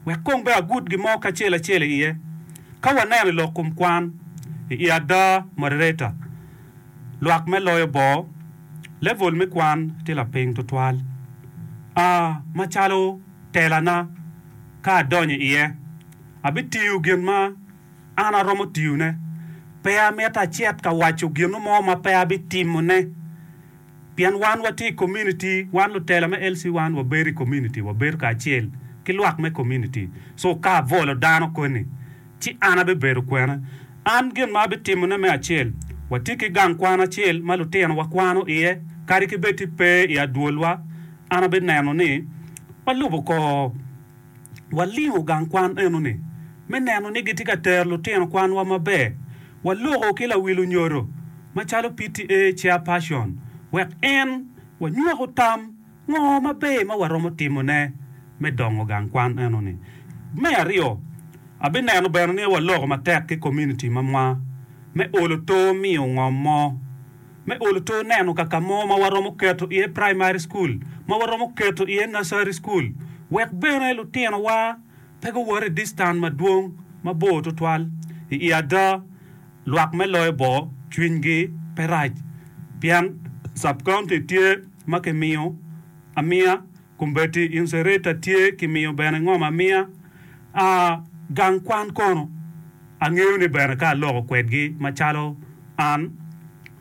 Wek kong bene agut gimo kacel acel i iye. Ka waneno i lok kom kwan, i i ada moderator lwak me loyo bor, level me kwan tye lapiny tutwal. A macalo tela na, ka adonyo i iye, abitiyo gin ma an aromo tiyone. Pe amito acit ka waco gino mo ma pe abitimo ne. Pien wan watye i komuniti, wan lutela me LC wan wabedo i komuniti, wabedo kacel ki lwak me komuniti. So ka abolo dano koni, ci an abibedo kwene? An gin ma abitimone me acel, watye ki gang kwan acel ma lutinowa kwano iye, kadi ki bed ti pe i adwolwa, an abineno ni walubo kor. Walingo gang kwan eno-ni me neno ni gitye ka tero lutino kwanwa maber. Waloko ki lawilo nyodo macalo PTA chairperson wek en wanywako tam ngo maber ma waromo timone me dongo gang kwan eno-ni. Me aryo, abineno bene ni waloko matek ki komuniti mamwa me olo to miyo ngom mo. me olo to neno ka ka mo ma waromo keto iye praimari cukul, ma waromo keto iye nursery cukul, wek bene lutinowa pe guwot i distan madwong mabor tutwal. I i ada, lwak me loyo bor cwinygi pe rac pien sub-county tye ma kimiyo amiya. Kombeddi Insereta tye ki miyo bene ngom amiya, a gang kwan kono. Angeyo ni bene ka aloko kwedgi macalo an,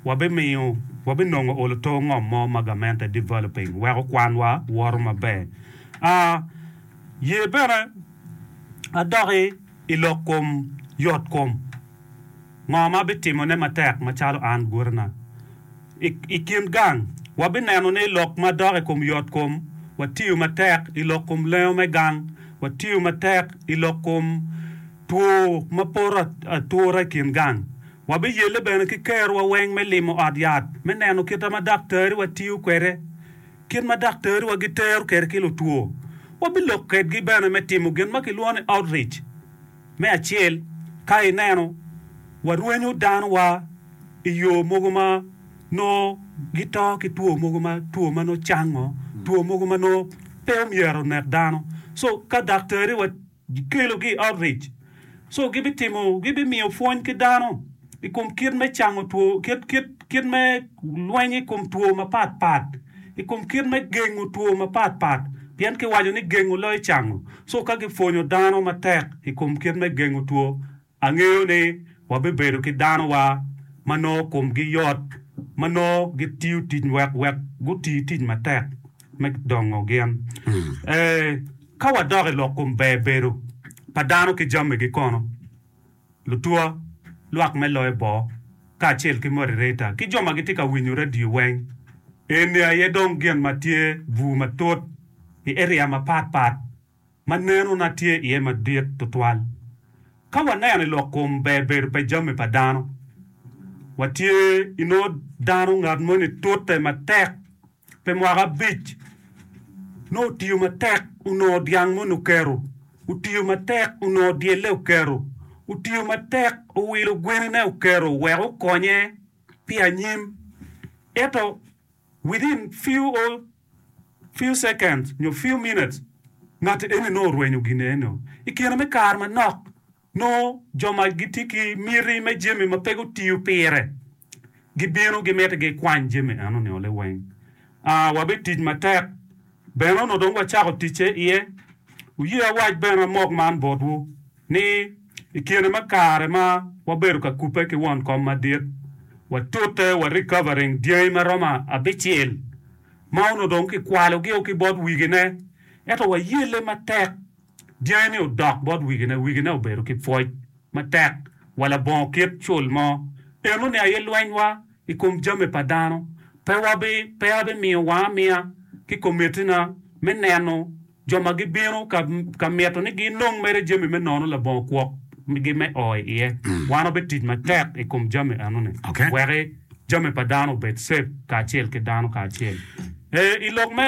wabimiyo, wabinongo olo to ngom mo ma gamente developing weko kwanwa woto maber. A ye bene adoki i lok kom yot kom. Ngo ma abitimone matek macalo an gutina? I i kin gang, wabineno ni lok ma dok i kom yotkom, watiyo matek i lok kom lengo me gang, watiyo matek i lok kom two ma poto at, atura i kin gang. Wabiyelle bene ki kerowa weng me limo ot yat me neno kita ma daktariwa tiyo kwede, kit ma daktariwa gitero kede ki lutwo. Wabilok kedgi bene me timo gin ma kilwongo ni outreach. Me acel, ka ineno, warwenyo danowa i yo mogo ma nongo gito ki two mogo ma two ma nongo cango, two mogo ma nongo pe omyero onek dano. So ka daktariwa gikelogi i outreach, so gibitimo, gibimiyo pwony ki dano. i kom kit me cango two, kit, kit, kit me lweny i kom two mapat pat, i kom kit me gengo two mapat pat, pien kiwaco ni gengo loyo cango. So ka gipwonyo dano matek i kom kit me gengo two, angeyo ni wabibedo ki danowa ma nongo komgi yot, ma nongo gitiyo tic wek, wek guti tic matek me dongo gin. Ee, ka wadok i lok kom ber bedo pa dano ki jamigi kono. lutwo, lwak me loyo bor, kacel ki modereta ki jo ma gitye ka winyo radio weng. Eni aye dong gin ma tye bur matut i eria mapat pat ma neno na tye iye madit tutwal. Ka waneno i lok kom ber bedo pe jami pa dano, watye inongo dano ngat moni tute matek Pi mwaka abic, nongo otiyo matek onongo dyang moni oketo, otiyo matek onongo dyelle oketo, otiyo matek owilo gwenine oketo wek okonye pi anyim. Ento within few o few seconds nyo few minutes, ngatti eni nongo orwenyo gin enoni. I kine me kare manok, Nongo jo ma gitye ki miti me jami ma pe gutiyo pire gibino gimiti gikwany jami eno-ni oli weng. A Wabitic matek bene onongo dong wacako ticce iye. Wuye awac bene amok man botwu, ni i kine me kare ma wabedo ka kubbe ki won kom madit, watute wa recovering dyangi ma romo abicel ma onongo dong kikwalogio ki bot wigine, ento wayelle matek. Dyangi-ni odok bot wigine, wigine obedo ki pwoc matek wa labongo kit cul mo. Eno ni aye lwenywa i kom jami pa dano pe wabi pe abimiyo wanga amiya ki komitina me neno jo ma gibino ka ka mito ni ginong mere jami me nono labongo kwok gi me o i iye. Wan wabitic matek i kom jami eno-ni Okay. weki jami pa dano obed safe kacel ki dano kacel. Eh, i lok me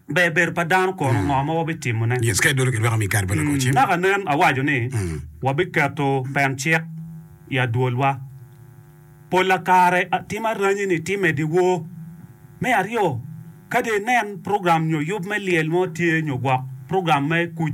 Ber bedo pa dano kono, ngo ma wabitimone? Yes, ka idolo kilwaka mi ikar ballot wacim. Naka nen awaco ni wabiketo pen cik i adwolwa. Pol la kare tim aranyi ni ti medi woo. Me aryo, kadi inen program nyo yub me lyel mo tye nyo gwok program me kuc.